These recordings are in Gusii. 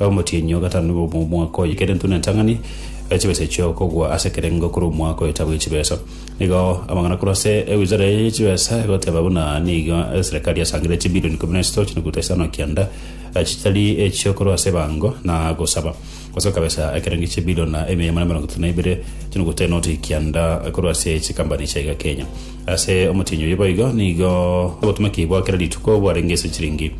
Omotienyi o gatano bwa omwaka oye kera entuna entang'ani ya chibesa echio ekogwa ase ekerengo korwa omwaka oetabu ye chibesa. Nigo amang'ana korwa ase ewizara eye ye chibesa egoteba buna nigo eserekari yasangire chibilioni ikomi na isatu chinukuta isano na kianda chitari echio korwa ase ebango na gosaba gosoka besa ekerengo chibilioni na emiya magana emerongo etato na ibere chinukuta enoti kianda korwa ase chikambani chiaiga Kenya. Ase omotienyi oyio boigo nigo obotomeki bwa kera rituko bwarenge ase chiringi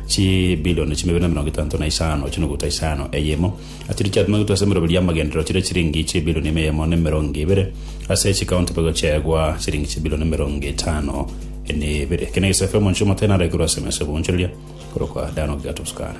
chibilioni chimabere na emerongo etanto na isano chinuguta isano. Eyemo achiri chiatomegwetwe ase emeroberio y'amagenderero chire chiringi chibilioni ime eyemo na emerongo ebere. Ase chikaunti boigo chiaegwa chiringi chibilioni emerongo etano na ibere. Eke negesaku kia omonche omoteene araike korwa ase emeso y'oboonchoreria korokwa Dani ogigato sukari.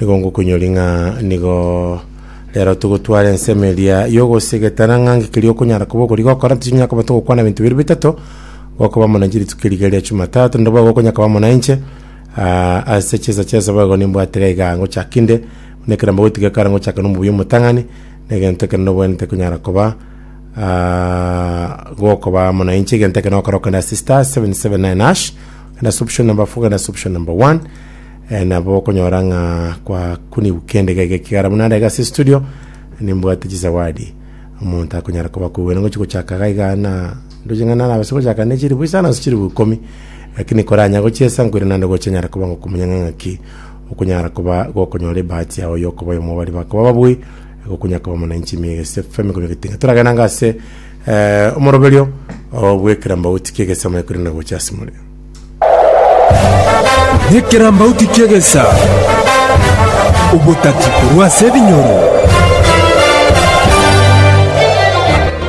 Nigo ngokunyori ng'a nigo rero togotwara ensemo eria y'ogosegetana ng'a ngi keria okonyara koba okori gokora tichinyara koba togokwana ebinto biria bitato gokoba amo na chiritu kia rigeria Jumatatu nabo igo okonya koba amo na inche ah, ase chinsa chia esabao igo nimbwate iga iga ngochaka inde buna ekero mbagotiga ekara ngochake na omobuya omotang'ani na egento ekero nobwenerete konyara koba ah, gokoba amo na inche egento ekero nagokora okogenda ase star 779 hash okogenda ase option number four okogenda ase option number one Eh, nabo okonyora ng'a kwakunigwa kende gege ekigara buna ndaiga ase studio nimbwate chisawadi omonto akonyara koba kogwena ngochi gochaka gaiga na ndoche ng'a nana abase gochaka ne chilifu isano ase chilifu ikomi lakini koranya gochiesa nkwire nande gochanyara koba ngokumanya ng'a ng'aki okonyara koba gokonyora ebahati yao yokoba oyomo bari bakoba babui gokunya koba mwananchi miegese femi konya getinga toragenda ng'a ase eh, omoroberio obwekera mbauti kiegese amaekwire na gocha asimore Nekerambauti ki'egesa, obotati korwa ase ebinyoro.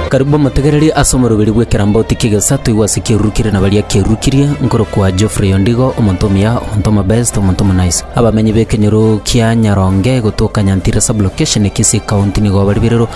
Karibu omotegereri ase omoroberi bw'ekerambauti ki'egesa toigwe ase kiarurukirie na baria kiarurukirie, nkorokwa Geoffrey Ondigo, omonto omuya, omonto omobest, omonto omonice. Abamenyi b'ekenyoro kia Nyaronge gotoka Nyantira sub-location e Kisii county nigo baribererwe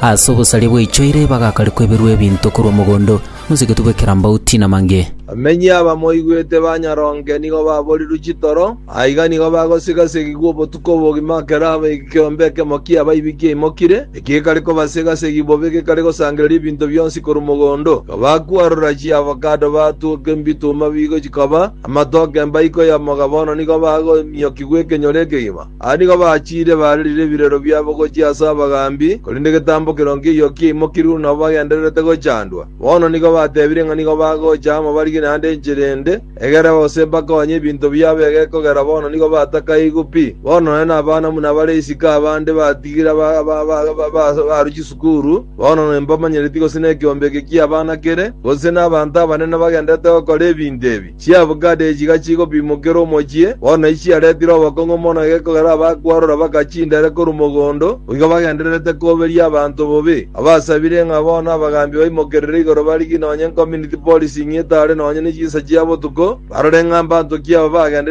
ase obosaria bwaichoire bagakarekwa eberwe ebinto korwa mogondo. Mosegetwe bw'ekerambauti namange. Bamenyi abamoigwete ba nyaronge nigo baborirwe chitoro, aiga nigo bagosigasigigwa obotuko obogima ekero ekeombe ekemo ki'abaibi kiaimokire, eki gekare kobasegasegi bobe gekare gosangereria ebinto bionsi korwa mogondo. Igo bakwarora chiavocado batuoka embituma bigo chikaba amatoke embaiko y'omoga bono nigo bagomiokigwa ekenyoro ekegima. Aya nigo bachiire baarerire ebirero biabo gochia ase abagaambi, korende egetambo kero nkeiyo kiaimokirwe nabo bagendererete gochandwa. Bono nigo batebire ng'a nigo bagocha amo barigie naende enchera ende, egere gose bakonye ebinto biabo egekogera bono nigo batakaigwe pi. Bono nonye nabana buna bare isiko abande batigire abaru chisukuru, bono nembamanyereti gose nekeombe eke ki'abana kere, gose nabanto abanene bagendererete gokora ebinto ebi. Chiavocado echi gachigopimokera omochie, bono nachi chiaretire obokong'u mono gekogera abakwarora bagachindere korwa mogondo, goika bagendererete koberia abanto bobe. Abasabire ng'a bono abagambi baimokerere igoro barigie nonye community policing etare nonye ne chinsa chia botuko, barore ng'a mbanto ki aba bagendereire